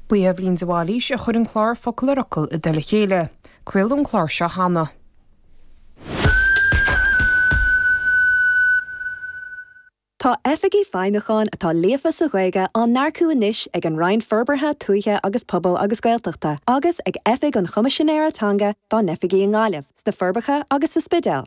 Ba í Eibhlín de Bhailís a chuir an clár Focal ar Fhocal i dtoll a chéile. Craoladh an clár seo cheana. Tá Oifigigh Feidhmiúcháin atá líofa sa Ghaeilge á n-earcú anois ag an Roinn Forbartha Tuaithe agus Pobail agus Gaeltachta agus ag Oifig an Choimisinéara Teanga dá n-oifigí i nGaillimh, sna Forbacha agus sa Spidéal.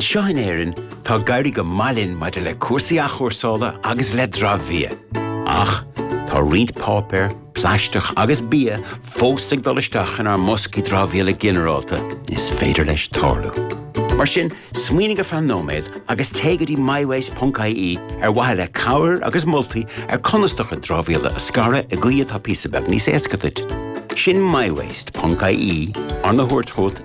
Anseo in Éirinn, tá ag éirí go maith linn maidir le cúrsaí athchúrsála agus le dramhbhia. Ach, tá roinnt páipéar, plaisteach agus bia fós ag dul isteach inár mboscaí dramhaíola ginearálta, is féidir leis tarlú. Mar sin, smaoinigh ar feadh nóiméad agus téigh go dtí mywaste.ie ar mhaithe le cabhair agus moltaí ar conas do chuid dramhaíola a scaradh i gcaoi atá píosa beag níos éasca duit. Sin mywaste.ie, arna thabhairt chugat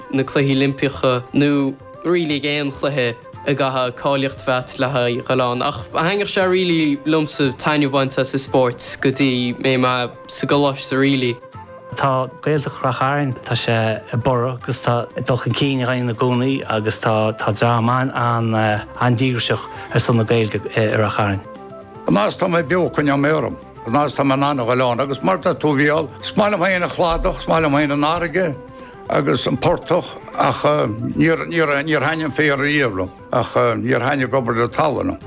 na Cluichí Oilimpeacha nó really ag aon chluiche a gcaithfeá cáilíocht a bheith a't le haghaidh a ghabháil ann ach thaithnigh sé really liomsa taitneamh a bhaint as an spórt go dtí mé mé sa gcoláiste so really. Tá Gaeltacht Ráth Chairn, tá sé ag borradh agus tá dul chun cinn á dhéanamh ann i gcónaí agus tá tá dream an-díograiseach ar son na Gaeilge i Ráth Chairn. An fhad is atá mé beo coinneoidh mé orm. An fhad is atá mé in ann a ghabháil ann agus mar tá tú bhuel, is maith liom féin an cladach, is maith liom féin an fharraige, agus an portach ach níor thaithnigh an féar ariamh liom ach níor thaithnigh obair na talúna.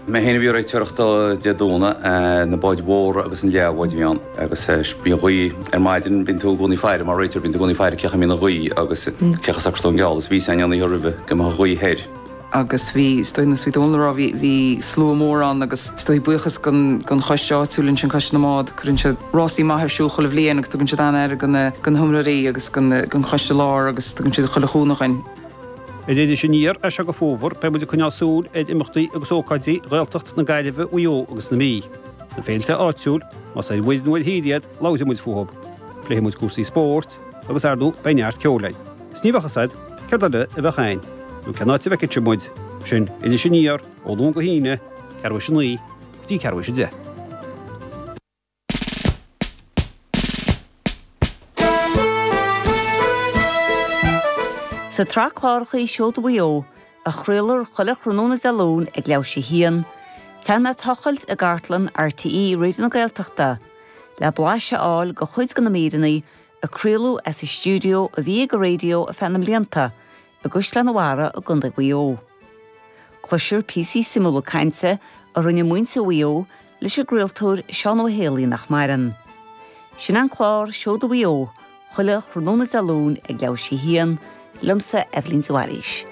Mé féin a bhí ag réiteoireacht Dé Domhnaigh, na báid mhóra agus na leathbháid a bhí ann agus bhí an ghaoth ar maidin, bíonn tú i gcónaí ag faire, mar réiteoir, bíonn tú i gcónaí ag faire cén chaoi a mbíonn an ghaoth agus cén chaoi a socróidh tú an geall agus bhí a fhios a'inn an oíche roimhe go mbeadh an ghaoth thoir. agus bhí is dóigh nó suite óna raibh, bhí slua mór ann agus is dóigh buíochas don choiste áitiúil ansin, Coiste na mBád, cuireann siad rásaí maith ar siúl chuile bhliain agus tugann siad an-aire do na hiomróirí agus don choiste láir agus tugann siad chuile chúnamh dhúinn. Ar Iris Aniar as seo go Fómhar beidh muid ag coinneáil súil ar imeachtaí agus ócáidí Ghaeltacht na Gaillimhe Mhaigh Eo agus na Mí, na féilte áitiúil, más ar mhuir nó ar thír iad, labhróidh muid fúthub, pléifidh muid cúrsaí spóirt agus ar ndóigh beidh neart ceoil ann. 'S ní bheadh a fhios a'd céard eile a bheadh a'inn, nó cén áit a bhfeicfeá muid. Sin Iris Aniar, ó Luan go hAoine, ceathrú tar éis a naoi go dtí ceathrú tar éis a deich. Sa tsraith cláracha Seoda Mhaigh Eo, a chraolar chuile thráthnóna Dé Luain ag leathuair tar éis a haon, téann mé a tochailt i gcartlann RTÉ Raidió na Gaeltachta le blaiseadh a fháil de chuid de na míreanna a craoladh as an stiúideo a bhí ag an raidió ar feadh na mblianta i gCaisleán a' Bharraigh i gContae Mhaigh Eo. Cloisfear píosaí suimiúla cainte a rinne muintir Mhaigh Eo leis an gcraoltóir Seán Ó hÉalaí nach maireann. Sin an clár Seoda Mhaigh Eo chuile thráthnóna Dé Luain ag leathuair tar éis a haon, liomsa Eibhlín de Bhailís.